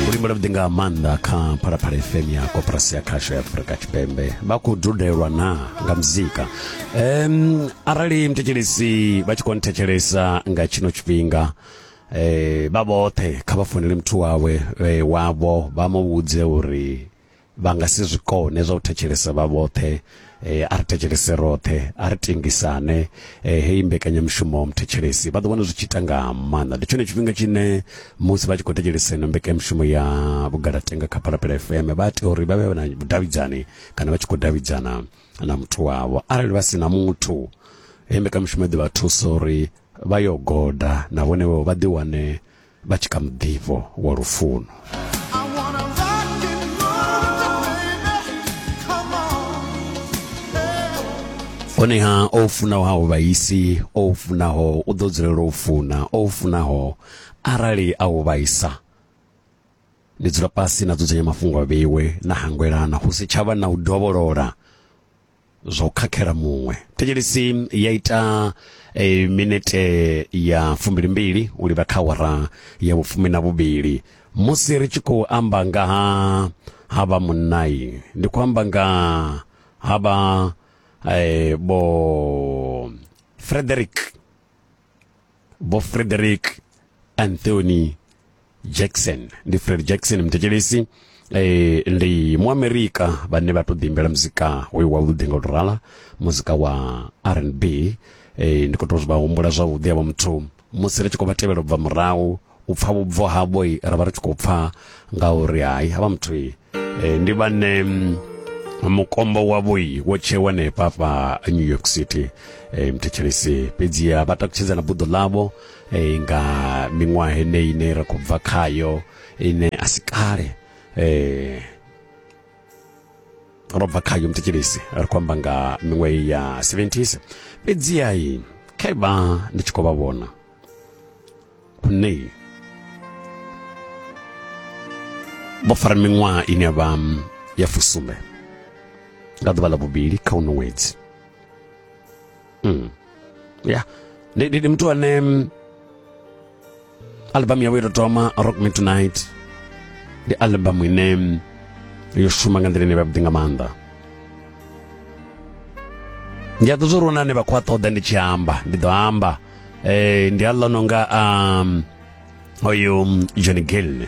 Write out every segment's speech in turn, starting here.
luimbo lwavhuḓi nga maanḓa kha phalaphala fm ya koporasi ya khasho ya afurika tshipembe vha khou dudelwa na nga muzika um arali mthetshelesi vha tshi khou nthetshelesa nga tshino tshifhinga eh vha vhoṱhe kha vha founele muthu wawe eh, wavho vha mu vhudze uri vha nga si zwi kone zwa u thetshelesa vha vhoṱhe eh, a ri thetshelese roṱhe a ri tengisane eh, heyi mbekanyamushumo wa muthethelesi vha ḓo vhona zwi tshi ita nga maanḓa ndi tshone tshifhinga tshine musi vha tshi khou thetshelesa ino mbekanyamushumo ya vhugalatenga kha phalaphala fm vha tea uri vha vhe na vhudavhidzani kana vha tshi khou davhidzana na muthu wavho arali vha si na muthu heyi mbekanyamushumo i ḓo vha thusa uri vha yo goda na vhone vho vha ḓiwane vha tshi kha muḓifho wa lufuno honeha o funaho ha u vhaisi o funaho u ḓo dzulela u funa o funaho arali a u vhaisa ndi dzula fhasi na dzudzanya mafhungo a vheiwe na hangwelana hu si tshavha na u dovholola zwa u khakhela muṅwe thetshelesi ya ita e, minete ya fumbilimbili u livha kha wara ya vhufumi na vhuvhili musi ri tshi khou amba nga ha ha vha munnai ndi khou amba nga ha vha e, vho frederick vho frederick anthony jackson ndi fred jackson mthetshelesi eh, ndi muamerika vhane vha tou ḓiimbela muzika hoyu wavhuḓi nga u tou rala muzika wa rnb eh, ndi khou tou zwi vha humbula zwavhuḓi avho muthu musi ri tshi khou vha tevhela u bva murahu u pfa vhubvo havho ra vha ri tshi khou pfa nga uri hai havha muthu e, ndi vhane mm, mukombo wavho wo tshewa hanefha fha new york city e, mthetshelesi fhedzi vha takutshedza na buḓo ḽavho e, nga miṅwaha heneyi ine ra khou bva khayo ine a si kale um ro bva khayo mthetshelesi ri khou amba nga miṅwaha ya 70s fhedziha khaivha ndi tshi khou vha vhona Nei. Vho fara miṅwaha ine ya vha mm, ya fusumbe nga ḓuvha ḽa vhuvhili kha uno ṅwedzi mm. ya ndi muthu ane mm, albamu yawe yo thoma rock me tonight ndi albamu ine mm, yo shuma nga nḓila ine vha vhuḓi nga maanḓa ndi a ḓo zwo ri wana ane vha khou a ṱoḓa ndi tshi amba ndi ḓo amba eh, ndi aḽo no nga um, oyu um, john gilne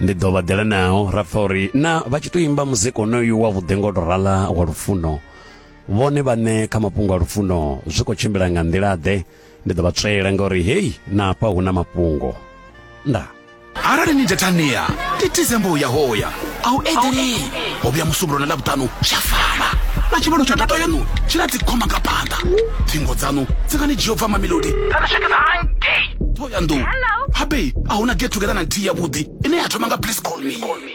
ndi ḓo vha ḓela nao ra pfa uri na vha tshi tou imba muzika onoyu wa vhuḓe ngo tou rala wa lufuno vhone vhaṋe kha mafhungo a lufuno zwi khou tshimbila nga nḓila-ḓe ndi ḓo vha tswela ngauri heyi na hafha hu na mafhungo ndaa arali ni data nia ndi december uya hoya a u eḓeli ho vhuya musumbulo na ḽavhuṱanu zwa fana na tshivhalo tsha data yanu tshi na dzikhoma nga phanḓa thingo dzanu dzi nga ni dzhia u bva mamilodi kana swikisa hangei thoyandou habe a huna get together na nthihi yavhuḓi ine ya thoma nga please call me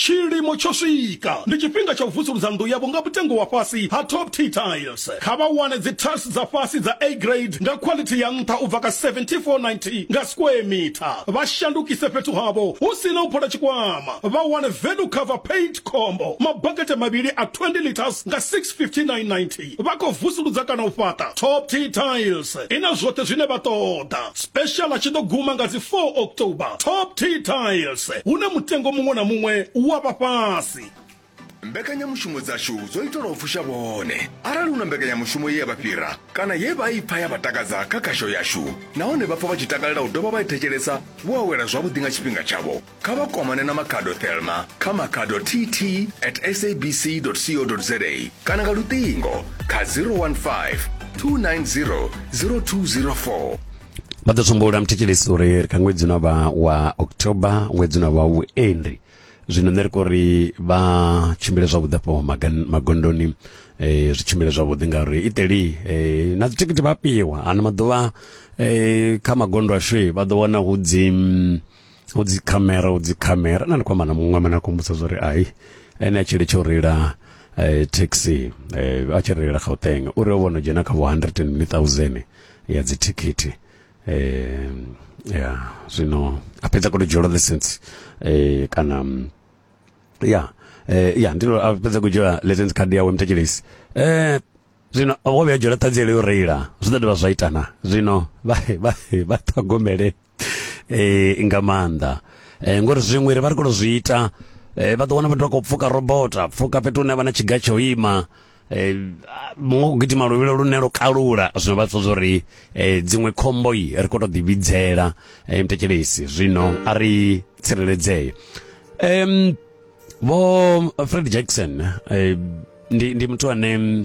Tshilimo tsho swika! Ndi tshifhinga tsha u vusuludza nnḓu yavho nga mutengo wa fhasi ha Top Tier Tiles. Kha vha wane dzi-tiles dza fhasi dza A-Grade nga khwalithi ya nṱha u bva kha R74.90 nga square meter. Vha shandukise fhethu havho hu si na u phola tshikwama, vha wane Value Cover Paint Combo, mabakete mavhili a 20 litres nga R659.90. Vha khou vusuludza kana u fhaṱa Top Tea Tiles. I na zwoṱhe zwine vha ṱoḓa. Special tshi ḓo guma nga dzi 4 October. Top Tea Tiles, hune mutengo muṅwe na muṅwe u wa vha fhasi. Mbekanyamushumo dzashu dzo itelwa u fusha vhone. Arali hu na mbekanyamushumo ye ya vha fhira kana ye vha i pfa ya vha takadza kha khasho yashu nahone vha pfa vha tshi takalela u dovha vha i thetshelesa, vho awela zwavhuḓi nga tshifhinga tshavho. kha vha kwamane na makhado thelma kha makhado tt at sabc co za kana nga luṱingo kha 015 290 0204 vha ḓo tsumbo lamthetshelesi uri ri kha ṅwedzi una vha wa october ṅwedzi una vha vhuendi zwino nṋe ri kho ri vha tshimbile zwavhuḓi afho magondoni um zwi tshimbile zwavhuḓi ngauri iteli um na dzithikhithi vha fhiwa ano maḓuvha um kha magondo ashu vha ḓo wana hu dzi u dzi khamera u dzi khamera na ndi kwamba na muṅwe mana kumbudza zwa uri ai ene a tshi litsha u reila eh, taxi eh, a tshi reila gauteng uri o vhono dzhena kha vho 100000 ya dzithikhithi eh, ya zwino a fhedza koto dzhielwa license eh, kana mm, ya eh, ya ndilo a fhedza ku dzhiela license card yawe mthetshelesi eh, zwino wo vhuya dzhiela ṱhanziela yo reila zwi ḓo dovha zwa itana zwino vha vha vha ṱhogomele eh nga maanḓa eh ngori zwiṅwe ri vha ri khou zwi ita eh vha ḓo wana vhathu vha khou pfuka robota pfuka fhethu hune vha na tshiga tsho ima eh muṅwe u gidima luvhilo lune lwo kalula zwino vha tsho uri eh dziṅwe khombo yi ri khou tou ḓi vhidzela eh mtekelesi zwino a ri tsireledzee em vho Fred Jackson eh ndi ndi muthu ane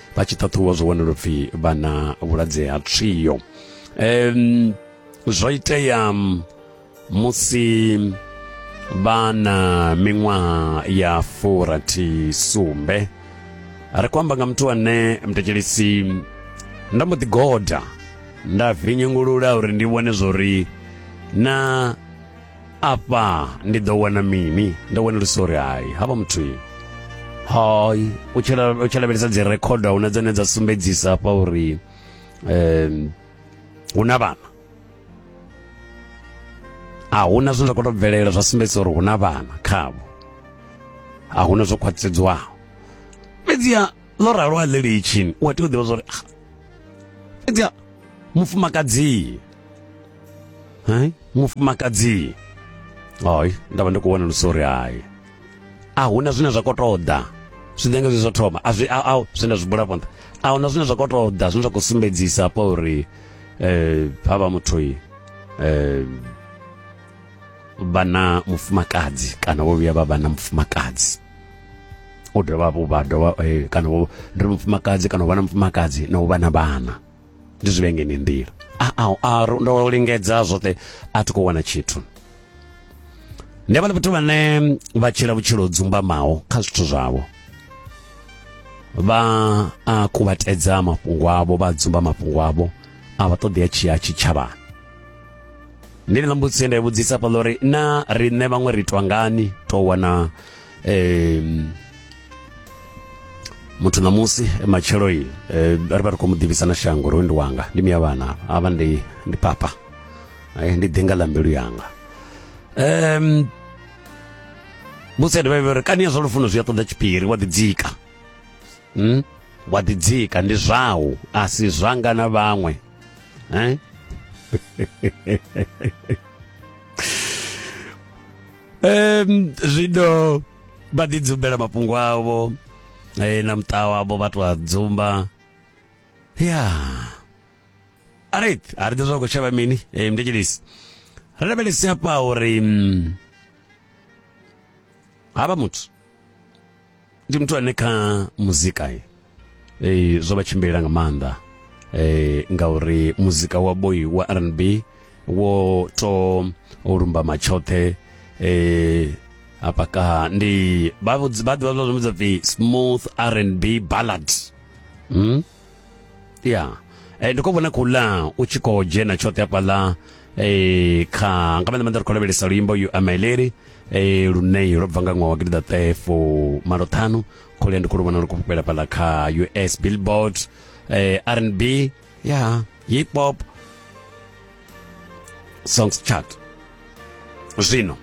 vha tshi ṱhaṱhuvha zwo wanela upfi vha na vhulwadze ha trio um zwo itea musi vha na miṅwaha ya furathi sumbe ri khou amba nga muthu ane mtekelisi nda mbo ḓi goda nda vinyungulula uri ndi vhone zwo ri na afha ndi ḓo wana mini ndo wana uri sorry hai havha muthu hai u tshi la- u tshi lavhelesa dzi record huna dzine dza sumbedzisa hafha uri um hu na vhana a huna zwine zwa khou tou bvelela zwa sumbedzisa uri hu na vhana khavho a huna zwo khwaṱhisedzwaho fhedziha ḽo ralo a ḽi litshini u a tea u ḓivha zwa uri ah, fhedziha mufumakadzi hai mufumakadzi hai nda vha ndi khou wana lusori hai a hu na zwine zwa khou tou ḓa zwiḓenge zwi zwo thoma a zwi a zwine zwi bula phanḓa a hu na zwine zwa khou tou ḓa zwine zwa khou sumbedzisa hafha uri um ha vha muthu um vha na mufumakadzi kana vho vhuya vha vha na mufumakadzi u dovha vha dovha kana ndi mufumakadzi kana u vha na mufumakadzi na u vha na vhana ndi zwi vhengeni nḓila a a a ndo lingedza zwoṱhe a thi khou wana tshithu ndi vhale vhathu vhane vha tshila vhutshilo dzumbamaho kha zwithu zwavho vha a kuvhatedza mafhungo avho vha dzumba mafhungo avho a vha ṱoḓea tshia tshitshavhani ndi ḽa mbudzi nda vhudzisa fhaḽa uri na riṋe vhaṅwe ri itwa ngani to wana um muthu na musi eh, matshelo-i eh, ri vha ri khou mu ḓivhisa na shango uri ndi wanga ndi miya vhana avha ndi ndi papa eh, ndi ḓinga ḽa mbilu yanga um musi adivha uri kani ya zwa lufuno zwi a ṱoḓa tshiphiri wa ḓidzika hmm? wa ḓidzika ndi zwau a si zwanga na vhaṅwe eh? um zwino vha ḓi dzumbela mafhungo avho eh, na muṱa wavho vha tou a dzumba ya alright a ri ḓi zwa khou shavha mini eh, mndetshedisi ri lavhelesi hafha uri mm, havha muthu ndi muthu ane kha muzika ye ee zwo vha tshimbilela nga maanḓa eh ngauri muzika wa boy wa R&B wo to o lumba matshoṱhe eh hapa ka ndi ba ba ba zwa pfi smooth R&B ballad hmm yeah eh ndiko vhona kula u tshi kho dzhena tshoṱhe hapa la eh kha nga maanḓa maanḓa ri khou lavhelesa luimbo you are my lady eh lune lwo bva nga ṅwaha wa gidida ṱefo malo ṱhanu khole ndi khulu vhona uri kufhela fhala kha us billboard eh, rnb ya yeah, hip hop songs chart zwino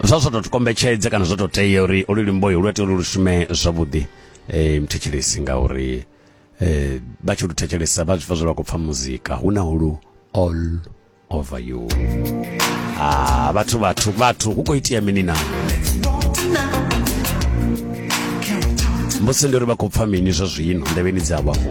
zwa zwo tou kombetshedze kana zwo tou tea uri olu limboyo lu tea uri lu shume zwavhuḓi eh, mthetshelesi ngauri eh, vha tshi lu thetshelesa vha zwi pfa zwo vha khou pfa muzika hu na hulu all over you ah vhathu vhathu vhathu hu khou itia mini na musi ndi uri vha khou pfa mini zwa zwino ndevheni dzavho afho